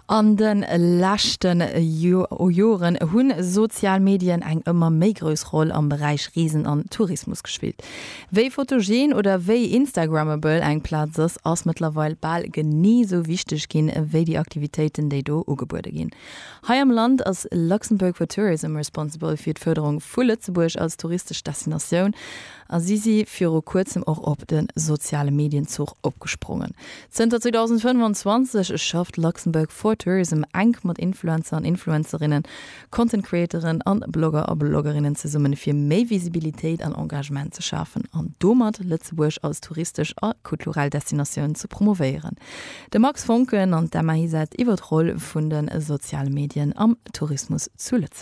An de leschte Joren hu sozial Medien eng ëmmer méi grouss Roll am Beräich Reesen an Tourismus gespillt. Wéi photogen oder wéi instagrammable eng Plaz ass, ass mëttlerweil bal genee esou wichteg ginn, wéi déi Aktivitéiten, déi do ugebuede ginn. Hei am Land ass Luxembourg for Tourism responsible fir d'Fërderung vu Lëtzebuerg als touristesch Destinatioun. A si si viru kuerzem och op de soziale Medien-Zuch opgesprongen. Zënter 2025 schafft Luxembourg for Tourism enk mat Influencer an Influencerinnen, Content Creatoren a Blogger a Bloggerinnen zesummen, fir méi Visibilitéit an Engagement ze schafen an domat Lëtzebuerg als touristesch a kulturell Destinatioun ze promovéieren. De Max Voncken an d'Emma Hysett iwwer d'Roll vun de soziale Medien am Tourismus zu Lëtzebuerg.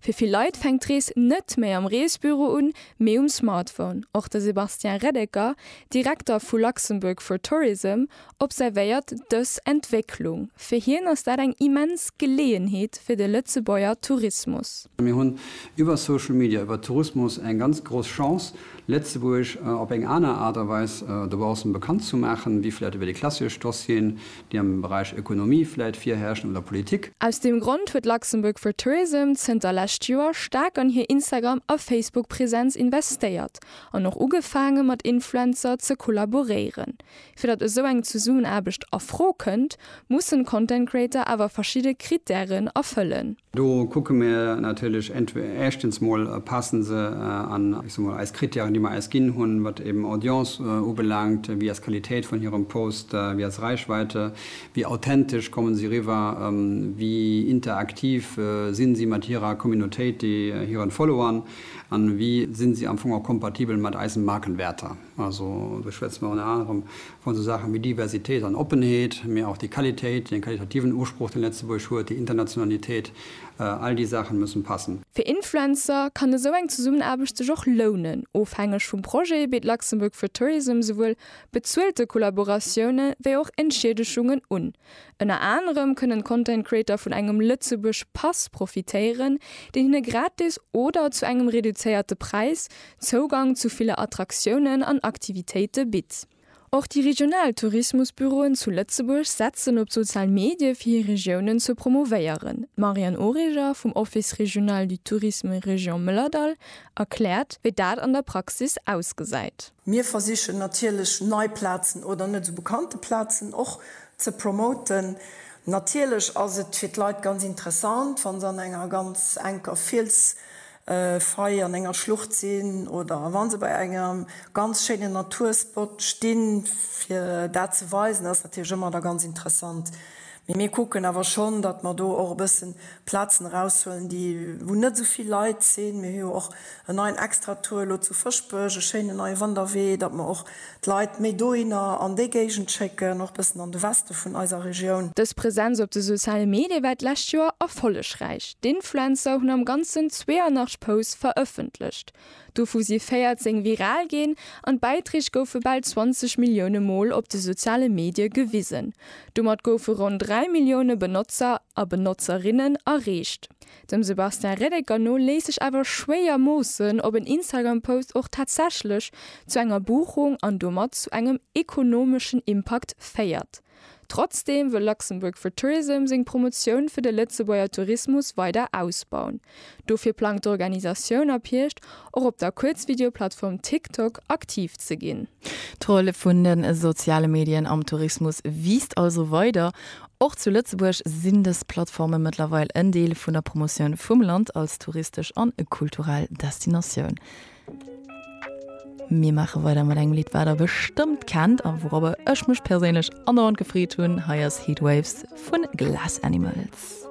Fir vill Leit fänkt d'Rees net méi am Reesbüro un, mee um Smartphone. Och de Sébastien Reddecker, Direkter vu Luxembourg for Tourism, observéiert dës Entwécklung. Fir hien ass dat eng immens Geleeënheet fir de Lëtzebuerger Tourismus. Mir hunn iwwer Social Media, iwwer Tourismus eng ganz grouss Chance, Lëtzebuerg op eng aner Aart a Weis dobaussen bekannt ze maachen, wéi vläicht iwwer déi klassesch Dossieren, déi am Beräich Ökonomie vläit virherrschen, oder Politik. Aus deem Grond huet Luxembourg for Tourism zënter lescht Joer staark an hir Instagram a Facebook Präsenz investéiert an och ugefaange mat Influencer ze kollaboréieren. Fir datt esou eng Zesummenaarbecht a Fro kënnt, mussen Content Creator awer verschidde Krittären erfëllen. Do kucke mir natierlech éischtens mol, passe se an, ech so mol, eis Krittären, déi mer eis ginn hunn, wat eben Audience ubelaangt, wéi ass d'Qualitéit vun hirem Post, wéi ass Reichweite, wéi authentesch komme si riwwer, wéi interaktiv si si mat hirer Communautéit, hiren Followern, an wéi si si am Fong och kompatibel mat eisen Markenwäerter. Also do schwätze mer ënner anerem vu sou Saachen wéi Diversitéit an Oppenheet, mee och déi Qualitéit, dee qualitativen Usproch, dee Lëtzebuerg huet, déi Internationalitéit, all déi Saachen mussen passen. Fir Influencer kann esou eng Zesummenaarbecht sech och lounen. Ofhängeg vum Projet bitt Luxembourg for Tourism souwuel bezuelte Kollaboratioune wéi och Entschiedeschungen un. Ënner anerem kënnen Content Creator vun engem Lëtzebuerg Pass profitéieren, deen hinne gratis oder zu engem reduzéierte Präis Zougang zu ville Attraktiounen an Aktivitéite bitt. Och déi regional Tourismusbüroen zu Lëtzebuerg setzen op d'sozial Medie fir hir Regiounen ze promouvéieren. D'Marianne Origer vum Office Régional du Tourisme Région Mëllerdall erkläert, wéi dat an der Praxis ausgesäit. Mir versichen natierlech nei Plazen oder net esou bekannte Plazen och ze promoten. Natierlech ass et fir d'Leit ganz interessant, wa se an enger ganz enker Fielsfaille, an enger Schlucht sinn oder wa se bei engem ganz schéinen Naturspot stinn. Fir dat ze weisen ass natierlech ëmmer da ganz interessant. Mee mir kucken awer schonn, datt mer do och e bëssen Plazen eraushuelen, déi, wou net esou vill Leit sinn. Mir hu jo och en neien Extratour elo zu Fëschbech, e schéinen neie Wanderwee, datt mer och d'Leit méi dohinner an déi Géigend schécken, och bëssen an de Weste vun eiser Regioun. Dës Presenz op de soziale Medie war d'lescht Joer erfollegräich. D'Influencer hunn am Ganzen 82 Posts verëffentlecht, dovu si 14 viral ginn an d'Bäiträg goufe bal 20 Millioune Mol op de soziale Medie gewisen. Domat goufe ronn 3 Millioune Benotzer a Benotzerinnen erreecht. Dem Sebastien Reddecker no léisst sech awer schwéier moossen, ob en Instagram-Post och tatsächlech zu enger Buchung an domat zu engem ekonomeschen Impakt féiert. Trotzdeem wëll Luxembourg for Tourism seng Promotioun fir de Lëtzebuerger Tourismus weider ausbauen. Dofir plangt d'Organisatioun ab Hierscht och op der Kuerzvideoplattform TikTok aktiv ze ginn. D'Roll vun de soziale Medien am Tourismus wiisst also weider. Och zu Lëtzebuerg sinn dës Plattforme mëttlerweil en Deel vun der Promotioun vum Land als touristesch an kulturell Destinatioun. Mir maache weider mat engem Lidd, wat der bestëmmt kennt a wourobber ech mech perséinlech an der Rond gefreet hunn. Hei ass Heatwaves vun Glass Animals.